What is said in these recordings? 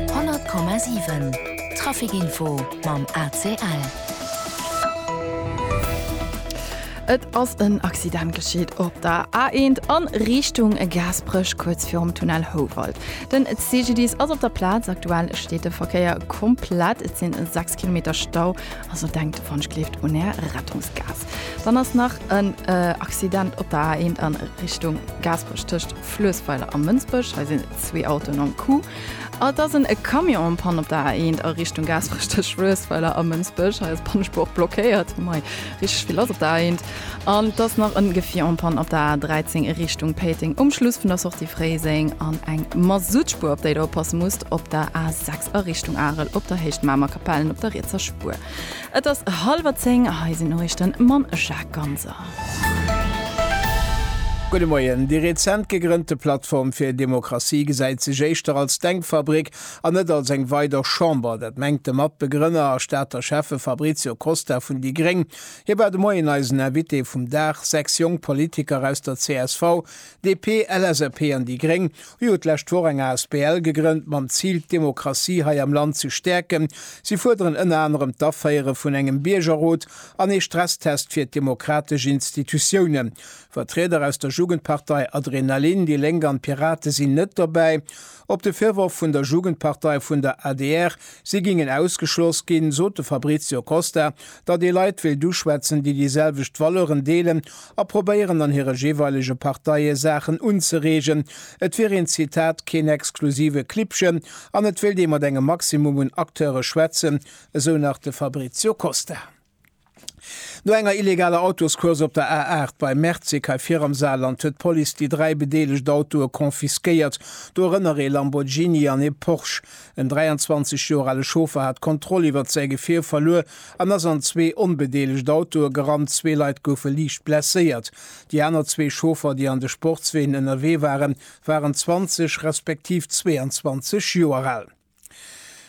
100,7 Trafic Info mam ACL. Et ass en Accident geschitt op der A1 a Richtung Gaasperech, kuerz virum Tunnel Houwald. Den CGDIS ass op der Plaz. Aktuell steet de Verkéier komplett. Et sinn 6 Kilometer Stau, also denkt d'Wonschkleeft un Är Rettungsgaass. Dann ass nach en Accident op der A1 a Richtung Gaasperech tëscht Fluessweiler a Mënsbech. Hei sinn zwee Autoen am Coup. Et ass en Camion en Panne op der A1 a Richtung Gaasperech tëscht Fluessweiler a Mënsbech. Hei ass d'Pannespuer blockéiert. Mei, richteg vill lass op der A1. An et ass nach en Gefier en Panne op der A13 a Richtung Péiteng um Schluss vun der Sortie Fréiseng. An eng Masuttspuer, op déi der oppasse musst, op der A6 a Richtung Arel op der Héicht Mamer Kapellen op der rietser Spuer. Et ass hallwer zéng, hei sinn d'Noriichten mam Jacques Ganser. Gudde Moien. Déi rezent gegrënnte Plattform fir Demokratie gesäit sech éischter als Denkfabrik an net als eng weider Chamber. Dat mengt de Matbegrënner a Stater Schäffe Fabrizio Costa vun déi gréng. Hie war de Moien eisen Invité vum Dag. Sechs jonk Politiker aus der csv DP, LSAP an déi Gréng hu jo d'lescht Woch eng asbl gegrënnt mam Zil, d'Demokratie hei am Land ze stäerken. Si fuerderen ënner anerem d'Aféiere vun engem Biergerrot an ee Stresstest fir d'demokratesch Institutiounen. Vertrieder aus der Jugendpartei Adrenalin, déi Lénk an d'Pirate sinn net dobäi. Op de Virworf vun der Jugendpartei vun der adr, si géingen ausgeschloss ginn, sot de Fabrizio Costa, datt ee Leit wéilt uschwätzen, déi déi selwecht Valeuren deelen A probéieren an hire jeeweilege Parteie Saachen unzereegen. Et wier een, Zitat, keen exklusive Klibbchen an et wéilt ee mat engem Maximum un Acteure schwätzen, esou nach de Fabrizio Costa. No enger illegaler Autoscourse op der A8 bei Merzig hei vir am Saarland huet d'Police déi dräi bedeelegt Autoe confisquéiert, dorënner ee Lamborghini an ee Porsche. En 23 Joer ale Chauffer hat d'Kontroll iwwert säi Gefier verluer. En ass an zwee onbedeelegt Autoe gerannt, zwee Leit goufe liicht blesséiert. Déi aner zwee Chauffer, déi an de Sportsween ënnerwee waren, waren 20 respektiv 22 Joer al.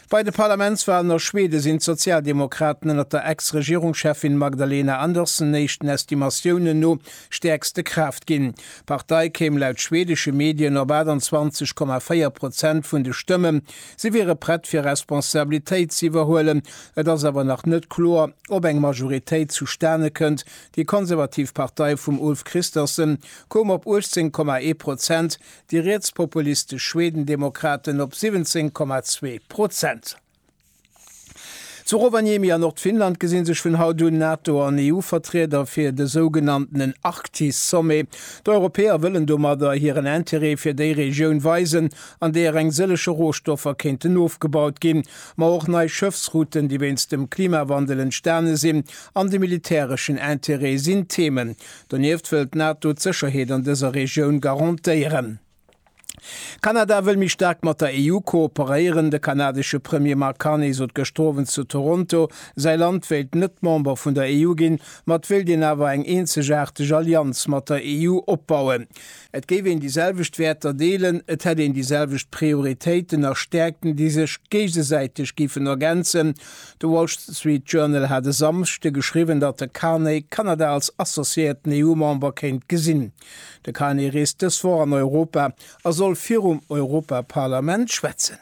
Bei de Parlamentswalen a Schwede sinn d'Sozialdemokraten ënnert der Ex-Regierungscheffin Magdalena Andersson éischten Estimatiounen no stäerkste Kraaft ginn. D'Partei kéim laut schwedesche Medien op 28,4 Prozent vun de Stëmmen. Si wiere prett fir Responsabilitéit ze iwwerhuelen. Et ass awer nach net kloer, ob eng Majoritéit zustane kënnt. Déi konservativ Partei vum Ulf Kristersson koum op 18,1 Prozent, déi rietspopulistesch Schwedendemokraten op 17,2 Prozent. Zu Rovaniemi a Nordfinnland gesi sech vun haut un NATO an EU-Vertrieder fir de sougenanntenen Arktis-Sommet. D'Europäer wëllen domadder hiren Interêt fir déi Regioun weisen, an deeër eng sëllege Rohstoffer kéinten ofgebaut ginn, ma och nei Schëffsrouten, déi wéinst dem Klimawandel entstane sinn, an de militäreschen Interêt sinn Themen. Donieft wëll d'NATO d'Sécherheet an dëser Regioun garantéieren. Kanada wëll méi staark mat der EU kooperéieren. De kanadesche Premier Mark Carney sot gëschter Owend zu Toronto, säi Land wéilt net Member vun der EU ginn, ma et wéilt een awer eng eenzegaarteg Allianz mat der EU opbauen. Et géif een déi selwecht Wäerter deelen, et hätt een déi selwecht Prioritéiten a Stäerkten, déi sech géigesäiteg géifen ergänzen. De Wall Street Journal hat e Samschde geschriwwen, datt de Carney Kanada als associéierten EU-Member kéint gesinn. De Carney reest dës Woch an Europa a soll virum Europaparlament schwätzen.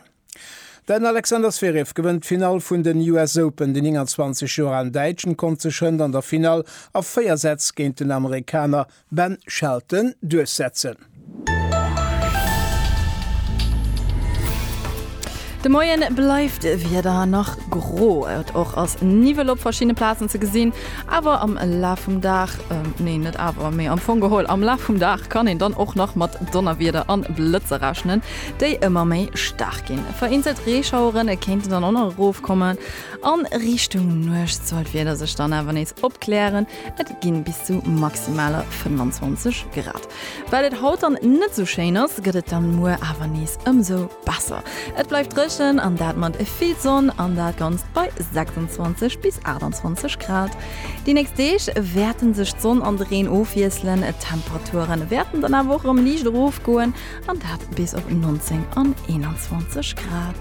Den Alexander Zverev gewënnt d'Finall vun den US Open. Den 29 Joer alen Däitschen konnt sech hënt an der Finall a véier Sätz géint den Amerikaner Ben Shelton duerchsetzen. De Moien bleift d'Wieder nach gro, et och ass Niwwel op verschiddene Plazen ze gesinn. Awer am Laf vum Dag, nee net awer, mee am Fong geholl am Laf vum Dag kann een dann och nach mat Donnerwieder an Blëtzer rechnen, déi ëmmer méi staark ginn. Vereenzelt Reeschauere kéinten dann och nach erofkommen. A Richtung Nuecht soll d'Wieder sech dann awer nees opklären, et gi bis zu maximaler 25 Grad. Well et haut dann net esou schéin ass, gëtt et dann muer awer nees ëmsou besser. Et bleift dréchen an dat mat vill Sonn an dat Ganzt bei 26 bis 28 Grad. Déi nächst Deeg wäerte sech d'Sonn an de Reen ofwiesselen, d'Temperature wäerten dann awer och erëm liicht erofgoen an dat bis op 19 an 21 Grad.